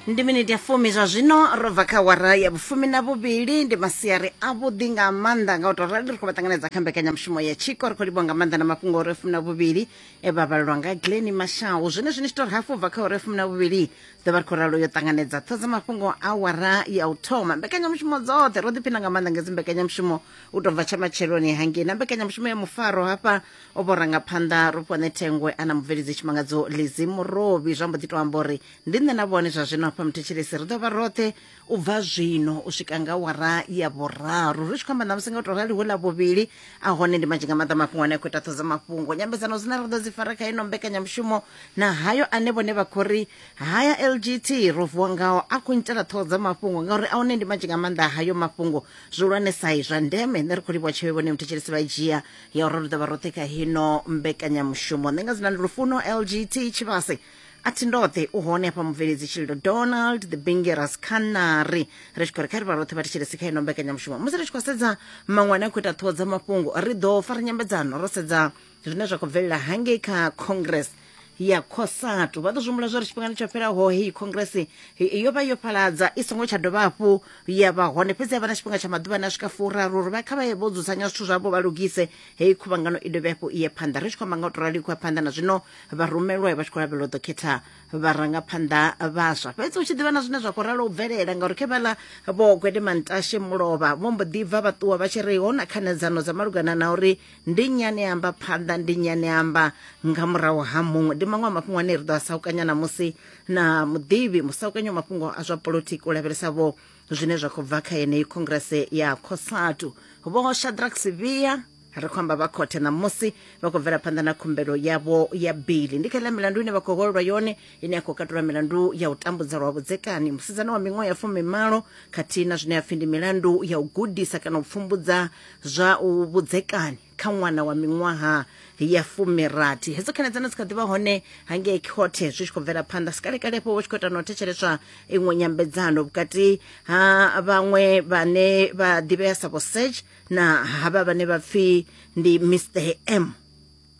ndi miniti ya fumi zwa zwino ro bva kha wara ya vhufumi na vhuvhili ndi masiari avhuḓi nga maanḓa nga u tou rali ri khou vha ṱanganedza kha mbekanyamushumo ya tshiko ri khou livhuwa nga maanḓa na mafhungo ore fumi na vhuvhili e vha vhalelwa nga gleni mashau zwine zwine tshitori hafhu bva kha ore fumi na vhuvhili ḓo vha ri khou ralo yo ṱanganedza ṱho dza mafhungo a wara ya u thoma mbekanyamushumo dzoṱhe ro ḓiphina nga maanḓa nga dzi mbekanyamushumo u tou bva tsha matsheloni hangei na mbekanyamushumo ya mufaro hafha o vho rangaphanḓa rufhone thengwe a na mubveledzi tshimangadzo lizi murovhi zwa mbo ḓi to amba uri ndi nṋe na vhone zwa zwino hafha muthetshelesi ri ḓo vha roṱhe u bva zwino u swika nga wara ya vhuraru ri tshi khou amba ṋamusi nga u tou rali hu ḽa vhuvhili a hone ndi manzhi nga maḓa mafhungo ane a khou ita ṱhodzo mafhungo nyambedzano dzine ra ḓo dzi fara kha ino mbekanyamushumo na hayo ane vhone vha khou ri haya lgt ro vuwa ngao a khou nyitela ṱhoho dza mafhungo ngauri a hone ndi manzhi nga maanḓa hayo mafhungo zwihulwane sai zwa ndeme nṋe ri khou livhuwa tsheo vhone muthetshelesi vha dzhia ya uri ri ḓo vha roṱhe kha hino mbekanyamushumo nṋe nga dzina ndi lufuno lgt tshivhase a thi ndoṱhe u hone hafha mubveledzi tshililo donald the bingeras canary ri tshi khou ri kha ri vha roṱhe vha thetshelesi kha ino mbekanyamushumo musi ri tshi khou sedza maṅwe ane a khou ita ṱhoho dza mafhungo ri ḓo fara nyambedzano ro sedza zwine zwa khou bvelela hangei kha congress ya cosatu vha ḓo zwi humbula zwori tshifhingani tsho fhelaho heyi congress yo vha yo fhaladza i songo tsha dovha hafhu ya vha hone fhedzi ya vha na tshifhinga tsha maḓuvha ane a swika furaru uri vha kha vha ye vho dzudzanya zwithu zwavho vha lugise heyi khuvhangano i dovhe hafhu i ye phanḓa ri tshi khou amba nga u to rali khou ya phanḓa na zwino vha rumelwa vha tshi khou lavhelela u ḓo khetha vharangaphanḓa vhaswa fhedzi u tshi ḓivha na zwine zwa khou ralo u bvelela ngauri khe vhala vho gwede mantashe mulovha vho mbo ḓi bva vha ṱuwa vha tshi ri ho na khanedzano dza malugana na uri ndi nnyi ane amba phanḓa ndi nnyi ane amba nga murahu ha muṅwe ndi maṅwe a mafhungo ane ri ḓo a saukanya namusi na muḓivhi musaukanyi wa mafhungo a zwa polotiki u lavhelesa vho zwine zwa khou bva kha yeneyi khongrese ya cosatu vho shadrack sivhiya ri khou amba vha khothe ṋamusi vha khou bvela phanḓa na khumbelo yavho ya bili ndi kha iḽa milandu ine vha khou holelwa yone ine ya khou katula milandu ya u tambudza lwa vhudzekani musidzana wa miṅwaha ya fumimalo khathihi na zwine ya pfhi ndi milandu ya u gudisa kana u pfumbudza zwa u vhudzekani kha ṅwana wa miṅwaha ya fumirathi hedzo khanedzano dzi kha ḓivha hone hangei khothe zwi tshi khou bvela phanḓa sikalekalepo vho tshi khou ita na u thetsheleswa iṅwe nyambedzano vhukati ha vhaṅwe vhane vha ḓivhea sa vho serge na havha vhane vha pfhi ndi mr m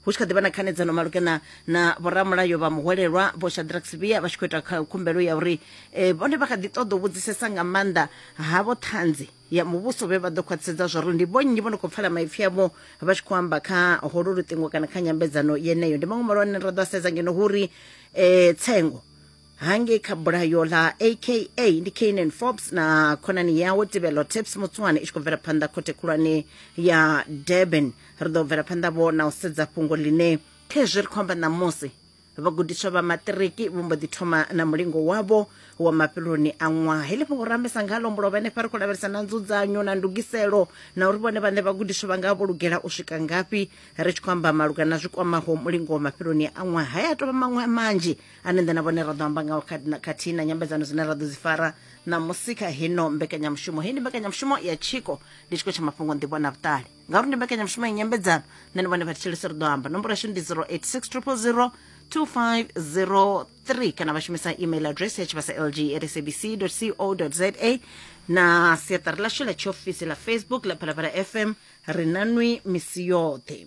hu tshi kha ḓivha na khanedzano malugana na vhoramulayo vha muhwelelwa vho shadrack sivia vha tshi khou ita khumbelo ya uri eh, vhone vha kha ḓi ṱoḓa u vhudzisesa nga maanḓa ha vho ṱhanzi ya muvhuso vhe vha ḓo khwaṱhisedza zwauri ndi vhonnyi vho no khou pfala maipfi avho vha tshi khou amba kha holo luṱingo kana kha nyambedzano yeneyo ndi maṅwe malwane ra ḓo a sedza ngeno hu ri um tsengo hangei kha bulayo ḽa aka ndi canan forbes na khonani yawe tibelo tips mutswane i tshi khou bvela phanḓa khothe khulwane ya durban ri ḓo bvela phanḓa vho na u sedza fhungo ḽine khezwi ri khou amba ṋamusi vhagudiswa vha maṱiriki vho mbo ḓi thoma na mulingo wavho wa mafheloni a ṅwaha heḽi fhungo ra ambesa nga lombo lwa vha henefha ri khou lavhelesa na nzudzanyo na ndugiselo na uri vhone vhaṋe vhagudiswa vha nga vho lugela u swika ngafhi ri tshi khou amba maluga na zwi kwamaho mulingo wa mafheloni a ṅwaha haya a tovha maṅwe a manzhi ane nḓe na vhone ra ḓo amba ngao khathihi na nyambedzano dzine ra ḓo dzi fara na musika hino mbekanyamushumo heyi ndi mbekanyamushumo ya tshiko ndi tshiko tsha mafhungo nḓivho na vhuṱali ngauri ndi mbekanyamushumo ya nyambedzano nṋe ndi vhone vha thetshelesi ri ḓo amba nomboro yashu ndi 086000 2503 kana vha shumisa email address ya tshivhasa lg at sabc co za na siaṱari ḽashu ḽa tshiofisi ḽa facebook ḽa phalaphala fm ri na nwi misi yoṱhe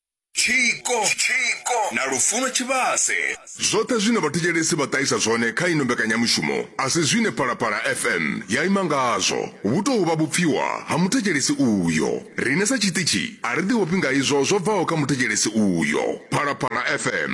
tshiko na lufuno tshivhase. Zwoṱhe zwine vhathetshelesi vha ṱahisa zwone kha ino mbekanyamushumo a si zwine Phalaphala FM ya ima ngazwo, vhu tou vha vhupfiwa ha muthetshelesi uyo. Riṋe sa tshiṱitshi a ri ḓiofhi nga izwo zwo bvaho kha muthetshelesi uyo. Phalaphala FM.